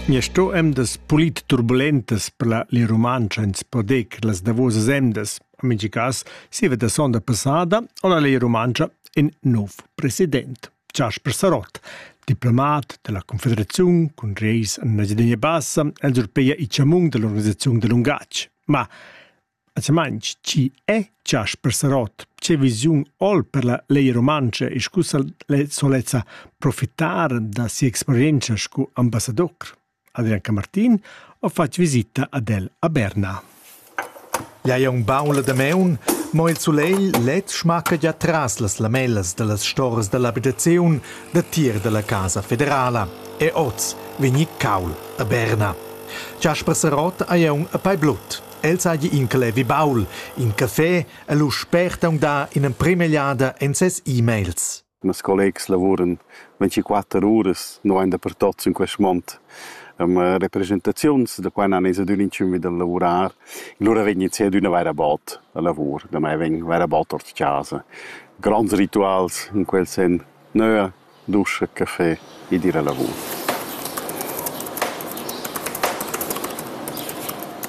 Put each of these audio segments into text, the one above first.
Mia sto emdas pulit turbulentas per la Lia Rumantscha ins po dir che las davosas emdas, en mintga cas, siva da sonda passada, on la Lia Rumantscha in nov president, Jasper Sarott, diplomat della Confederaziun cun reis en Engiadina Bassa, el zurpeia i chamung dell'organisaziun da lungatg. Ma A Chamainch chi è Chasper Sarott? Che visiun ho'l per la Legia Rumantscha e scu solezza profitar da si'experientscha scu ambassador? Adrian Camartin ho fat visita ad el a Berna. Ia è ün baul da maun, mo il sulegl led schmacca già tras las lamellas da las storas da l'abitaziun da tir da la Casa Federala e oz vegni caul a Berna. Chasper Sarott haja ün a pei blut. El seigi in clevi baul, in caffé e lu spert aunca in'emprema egliada en ses e-mails. Mes collegs lavuran 24 uras nulein dapertut sin quest mond. Um, representaziuns, da quai nan es adün inchün vi dal lavurar, lura vegn ins ad üna vera bot a lavur, da mai vegn vera bot ord casa. Grands rituals in quel sen nöa, Duscher café ed ir a lavur.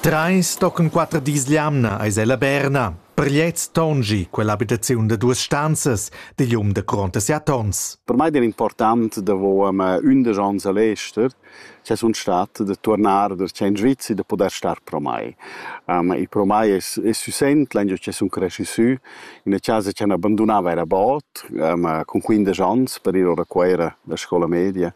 Treis tochen quater dis l'jamna eis ella Berna. Per gliez tonschi quell'abitaziun da duas stanzas digl um da Cronta si a Tons. Per mei era important davo ündesch ans a l'ester Sche sun stat da turnar da tschient Sviz e da pudair star pro mai. Il pro mai es es süsent lagniu cha sun creschi sü, in üna chasa cha n'abandunava eir a bod, cun quindesch ans per ir a Cuera da scoula media.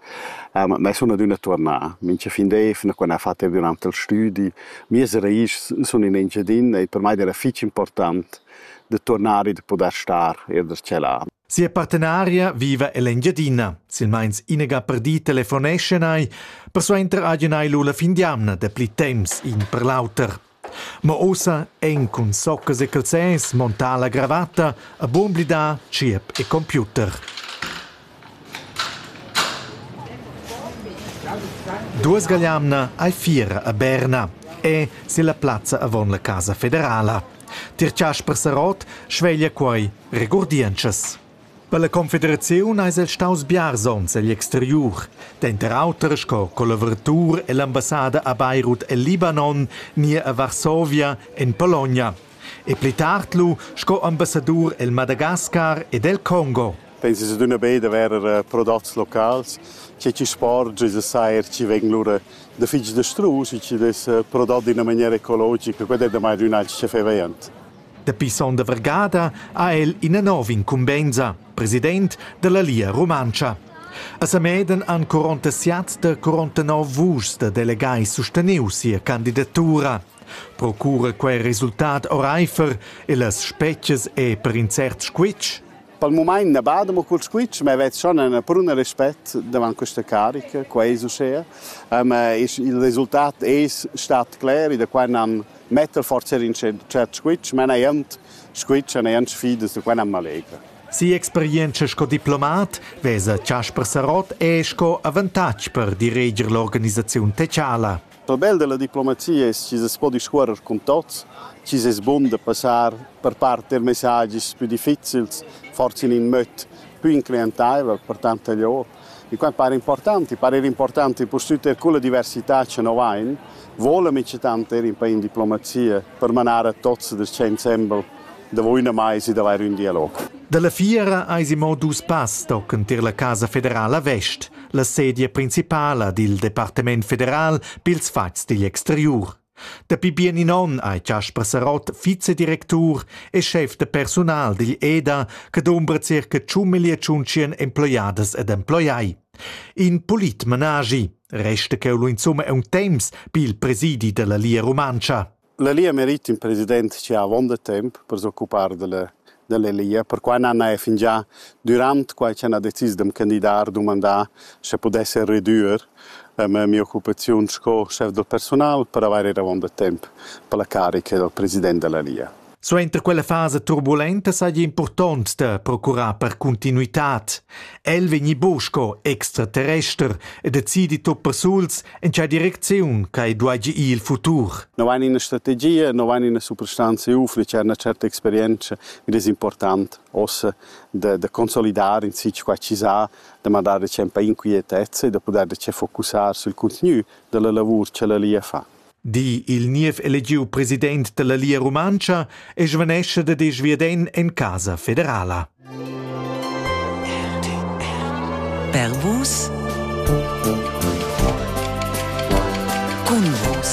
Ma sun adüna tuornà. Mincha fin d'eivna quando ha fat eir dürant il stüdi. Mias raís sun in Engiadin e per mai d'eira fich important da turnar e da pudair star eir da tschella. Sia partenaria viva ell'Engiadina. Silmeins inega per di telefoneschan ei, persuenter hagen ei lu la fin d'jamna dapli temps in per l'auter. Ma ussa ein cun soccas e calzers montà la gravatta a bumblidar tschiep e computer. Duas gagliamna ei fiera a Berna e silla plazza avon la Casa federala. Tier Casper Sarot sveglia quei Regurdientschas. Per la confederaziun eis el staus biars onns egl exteriur, denter auter sco collaboratur ell'ambassada a Beirut el Libanon ni a Varsovia en Pologna e pli tard lu sco ambassadur el Madagascar ed el Congo. Pensis adüna be da verer prodots locals, che chi sporgia e sair chi vegn lura da fich dastrus e chi dess prodot d'üna maniera ecologica, quai è damai ün alch chefevaint. Dapi sonda vargada ha el ina nova incumbensa, president dalla Lia Rumantscha. A Sameden han 47 da 49 vuschs da delegai susteniu sia candidatura. Procura quei resultat oreifer e las spetgas è per in cert squitsch? Per il moment ne bada mo col squitsch, ma vet schon una pruna respect davanti questa carica, qua es uschea. Um, il resultat es stat cler e da qua n'han metter forzer in cert squitsch, ma neant squitsch e neant sfidas, da quai am allegra. Si'experientscha sco diplomat vesa Chasper Sarott er sco avantatg per direger l'organisaziun tetschala. Il bel da la diplomazia es chi s'es po discuorrer cun tots, chi's es bun da passar per part er messagis pü difficils, forsa in ün möd pü incliantaivel per tant e lio. I quai para important, i para important purtüt eir culla diversità cha no vain, voula mincha tant eir in pa in diplomazia per manar a tots da sta insembel davo üna maisa d'avair ün dialog. Da la fiera ais imo dus pass tocanter la Casa federala vest, la sedia principala dil Departament federal pils fats digl exteriur. Dapi bien in onn ei Jasper Sarott vicedirectur e schef de personal digl EDA che dumbra circa tschun miglia tschuntschien emploiadas ed emploiai. In polit menaschi, resta cheu lu insumma è un temps pil presidi della Lia Rumantscha. La Lia merit in president che ha avon de temps per s'occupar della dall'elia, perquai n'han eir fingià dürant quai ch'el ha decis d'am candidar dumandà sche pudesser redüer ma mia occupaziun sco schef da persunal per avair ir avaunt da temp per la carica dal president da la Lia. Suenter quella fasa turbulenta saja impurtont da procurar per cuntinuitad. El vegni buc sco extraterrester e decidi tut persuls en tgei direcziun ch'ei dueigi ir il futur. No ein ina strategia, no ein ina suprastanza UF, c'è una certa esperienza, mi des important ossa de, de consolidare in sitio qua ci sa, de mandare c'è un po' inquietezza e de poter c'è focussar sul contenu della lavor che la lia fa. di il niev elegiu president dalla Lia Rumantscha e svanescha da disch viaden en Casa Federala. Per vus. Cun vus.